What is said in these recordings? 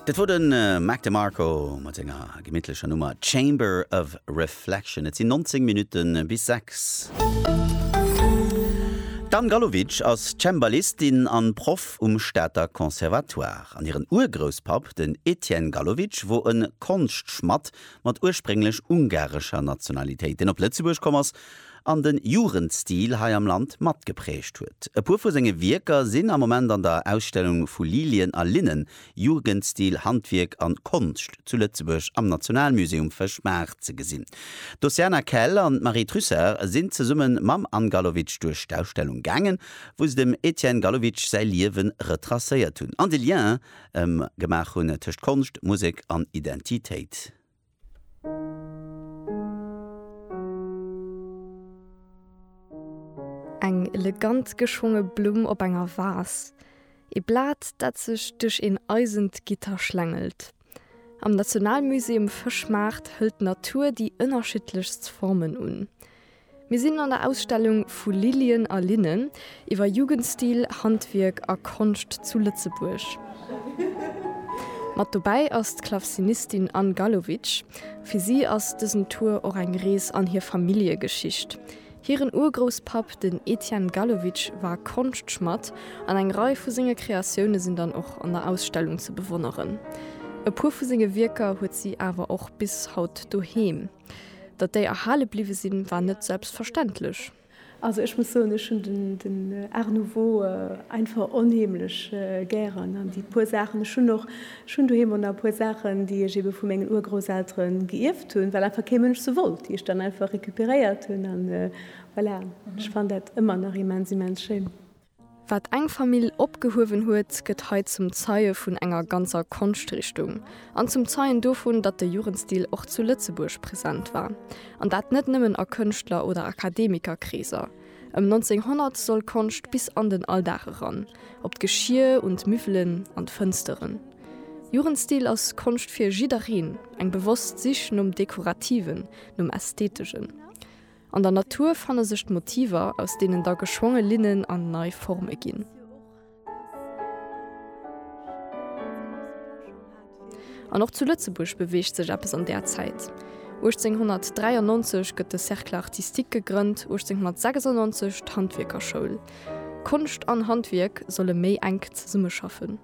Dat wor den Mac DeMarco mat senger gemittlecher Nummer Chamber of Reflection. Et sinn 19 Minutten bis 6. D'Anne Gallowitsch ass Cembalistin an Proff um Stater Conservatoire. An hiren Urgrousspapp, den Etienne Gallowitsch, wor en Konschtschmadd mat ursprénglech ungarescher Nationalitéit, deen op Lëtzebuerg komm ass an den Jugendstil hei am Land matgeprägt huet. E puer vu senge Wierker sinn am Moment an der Ausstellung vu Lilien a Linnen, Jugendstil, Handwierk an Konscht zu Lëtzebuerg am Nationalmuseum Fëschbach ze gesinn. D'Oceana Kell an d'Marie Trussart sinn zesumme mam Anne Gallowitsch duerch d'Ausstellung gaangen, wou se dem Etienne Gallowitsch säi Liewe retracéiert hunn an de Lien gemaach hunn tëscht Konscht, Musek an Identitéit. Eng elegant geschwonge Blumm op enger Vas, ee Blat, dat sech duerch een eisent Gitter schlängelt. Am Nationalmusée um Fëschmaart hëlt d'Natur déi ënnerschiddlechst Formen un. Mir sinn an der Ausstellung Vu Lilien a Linnen, iwwer Jugendstil, Handwierk a Konscht zu Lëtzebuerg. Mat dobäi ass d'Klavzinistin Anne Gallowitsch. Fir si ass dësen Tour och eng Rees an hir Familljegeschicht. Hiren Urgrousspapp, den Etienne Gallowitsch, war Konschtschmadd an eng Rei vu senge Kreatioune sinn dann och an der Ausstellung ze bewonneren. E puer vu senge Wierker huet si awer och bis haut doheem. Datt déi erhale bliwwe sinn, war net selbstverständlech. Also ech muss soen, ech hunn den Art nouveau einfach onheemlech gären an déi puer Saachen, ech hunn och, ech hunn doheem och nach e puer Saachen, déi ech eebe vu mengen Urgrousseltere geierft hunn, well einfach kee Mënsch se wollt, déi ech dann einfach recuperéiert hunn. An voilà, ech fannen dat ëmmer nach immens, immens schéin. Wat eng Famill opgehuewen huet, gëtt hei zum Zeie vun enger ganzer Konschtrichtung an zum Zeien dovun, datt de Jugendstil och zu Lëtzebuerg present war, an dat net nëmmen a Kënschtler oder Akademikerkreeser. Ëm 1900 soll Konscht bis an den Alldag eran, op d'Geschier, un d'Müffelen, an d'Fënsteren. Jugendstil ass Konscht fir jiddereen, eng bewosst Sich nom Dekorativen, nom Ästhetegen. An der Natur fanne sech d'Motiver, aus deenen da geschwonge Linnen an nei Forme ginn. An och zu Lëtzebuerg beweegt sech eppes an där Zäit. 1893 gëtt de Cercle artistique gegrënnt, 1896 d'Handwierkerschoul. Konscht an Handwierk solle méi enk zesummeschaffen.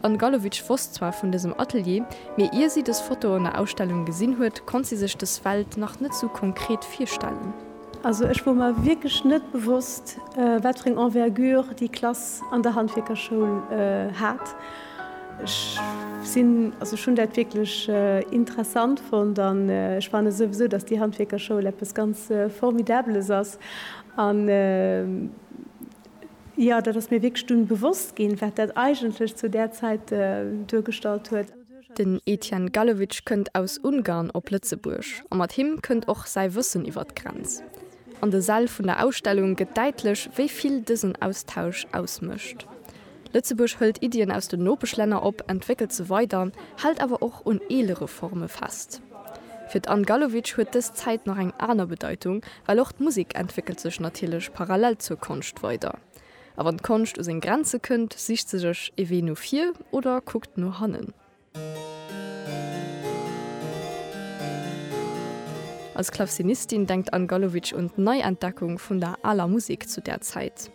D'Anne Gallowitsch wosst zwar vun dësem Atelier, mee ier si dës Fotoen der Ausstellung gesinn huet, konnt si sech dës Welt nach net sou konkret virstellen. Also ech wor mer wierklech net bewosst, wat fir eng Envergure déi Klass an der Handwierkerschoul hat. Ech sinn, also ech hunn dat wierklech interessant fonnt an ech fanne souwisou, dass déi Handwierkerschoul eppes ganz Formidabeles ass. Jo, dat ass mir wierklech dunn bewosst ginn, wat dat eigentlech zu där Zäit duergestallt huet. Den Etienne Gallewitsch kënnt aus Ungarn op Lëtzebuerg a mat him kënnt och säi Wëssen iwwer d'Grenz. An de Säll vun der Ausstellung gëtt däitlech, wéi vill dësen Austausch ausmécht. Lëtzebuerg hëlt Iddien aus den Nopeschlänner op, entwéckelt se weider, hält awer och un eelere Forme fest. Fir d'Anne Gallowitsch huet dës Zäit nach eng aner Bedeitung, well och d'Musek entwéckelt sech natierlech parallel zur Konscht weider. A wann d'Konscht u seng Grenze kënnt, sicht se sech ee Wee no vir oder kuckt no hannen. Als Klavcinistin denkt d'Anne Gallowitsch un d'Neientdeckung vun der aler Musek zu där Zäit.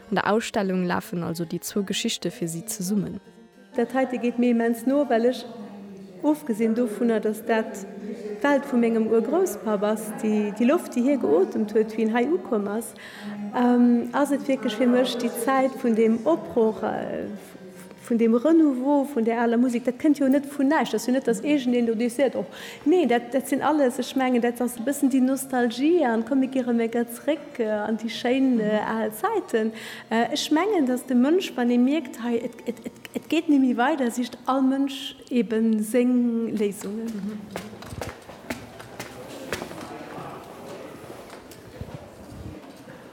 An der Ausstellung lafen also déi zwou Geschichte fir si zesummen. Dat heite geet mir immens no, well ech, ofgesinn dovunner, dass dat d'Welt vu mengem Urgrousspapp ass, déi Loft, déi hie geotemt huet, wéi en hei ukomm ass, ass et wierklech fir mech déi Zäit vun deem Opbroch, vun deem Renouveau vun där aler Musek. Dat kënnt jo net vun näischt. Dat ass jo net, dass iergendeen do deeg seet, och nee, dat sinn alles, ech mengen, dat ass e bëssen déi Nostalgie an d'Komm, mir kieren emol gär zeréck an déi schéin al Zäiten. Ech mengen, dass de Mënsch, wann e mierkt, hei, Et geet némmi weider, sicht all Mënsch ebe séng Léisungen.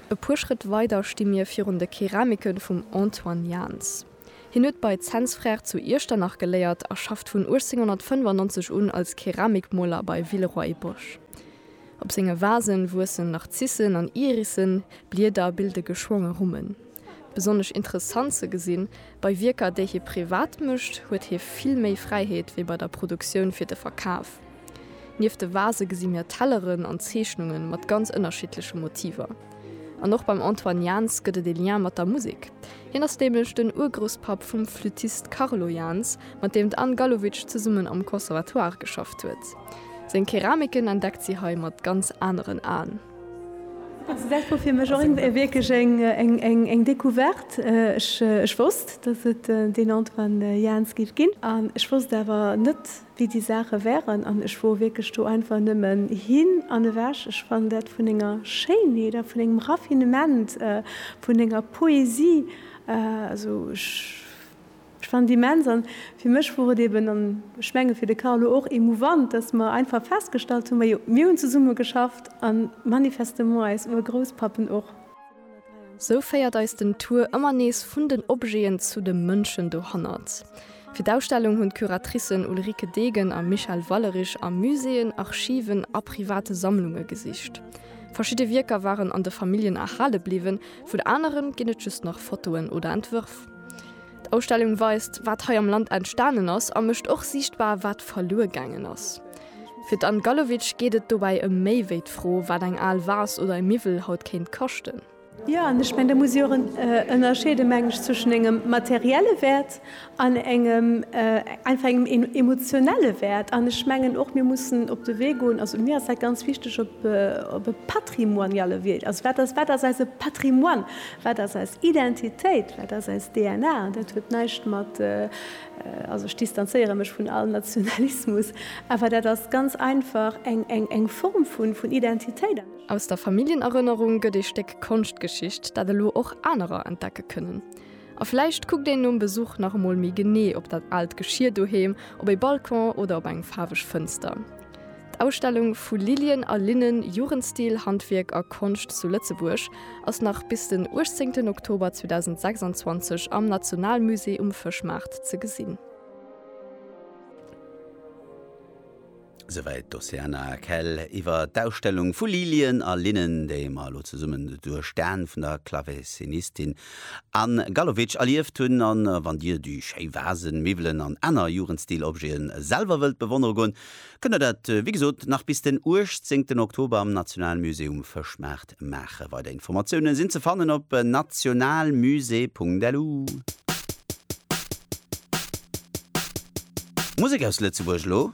E puer Schrëtt weider sti mir virun de Keramike vum Antoine Jaans. Hien huet bei Zens Frères zu Iechternach geléiert a schafft vun 1895 un als Keramikmoler bei Villeroy-Boch. Op senge Vasen wuessen Narzissen an Irissen, Blieder bilde geschwonge Rummen. Besonnesch interessant ze gesinn, bei Wierker, déi hie privat mécht, huet hie vill méi Fräiheet wéi bei der Produktioun fir de Verkaf. Nieft de Vase gesi mir Telleren an Zeechnunge mat ganz ënnerschiddleche Motiver. An och beim Antoine Jans gëtt et e Lien mat der Musek. Hien ass nämlech den Urgrousspapp vum Flüttist Carlo Jans, mat deem d'Anne Gallowitsch zesummen am Conservatoire geschafft huet. Seng Keramiken entdeckt si hei mat ganz aneren Aen. Also dat wor fir mech och eng wierklech eng eng eng eng Decouverte. Ech ech wosst, datt et deen Antoine Jaans géif ginn an ech wosst awer net wéi déi Saache wären an ech wor wierklech do einfach nëmmen hin an ewech. Ech fannen dat vun enger Schéinheet a vun engem Raffinement, vun enger Poesie, also ech. Ech fannen et immens, an fir mech wor et eben, an ech mengen fir de Carlo och, emouvant, dass mer einfach festgestallt hunn, majo, mir hunn zesumme geschafft, a manifestement eis Urgrousspappen och. Sou féiert eis den Tour ëmmer nees vun den Objeten zu de Mënschen dohannert. Fir d'Ausstellung hunn d'Curatricen Ulrike Degen a Michèle Wallerich a Muséeën, Archiven a private Sammlunge gesicht. Verschidde Wierker waren an de Familljen erhale bliwwen, vun aneren ginn et just nach Fotoen oder Entwërf. D'Ausstellung weist, wat hei am Land entstanen ass a mécht och siichtbar, wat verluer gaangen ass. Fir d'Anne Gallowitsch geet et dobäi ëm méi wéi d'Fro, wat eng al Vase oder e Miwwel haut kéint kaschten. Jo, an ech mengen, da muss ee och ënnerscheede meng ech zwëschen engem materielle Wäert an engem einfach engem emotionelle Wäert. An ech mengen och, mir mussen op de Wee goen, also mir ass dat ganz wichteg, op e patrimoniale Wee. Also wat ass eise Patrimoine? Wat ass eis Identitéit? Wat ass eis DNA? An dat huet näischt mat, also ech distanzéiere mech vun all Nationalismus, awer dat ass ganz einfach eng Form vun Identitéit. Aus der Familljenerënnerung gëtt ee Stéck Konschtgeschicht, dat elo och anerer entdecke kënnen. A vläicht kuckt een nom Besuch nach emol méi genee op dat aalt Geschier doheem, op ee Balcon oder op eng faarweg Fënster. D'Ausstellung Vu Lilien a Linnen, Jugendstil, Handwierk a Konscht zu Lëtzebuerg ass nach bis den 18 Oktober 2026 am Nationalmusée um Fëschmaart ze gesinn. Souwäit d'Oceana Kell iwwer d'Ausstellung Vu Lilien a Linnen, déi mer elo zesummen duerch d'Aen vun der Klavesinistin Anne Gallowitsch erlieft hunn. A wann dir déi schéi Vasen, Miwwelen an aner Jugendstil-Objeten selwer wëllt bewonnere goen, Kënnt der dat, wéi gesot, nach bis den 18 Oktober am Nationalmusée um Fëschmaart maachen. Weider Informatiounen sinn ze fannen op nationalmusée.lu. Musek aus Lëtzebuerg elo.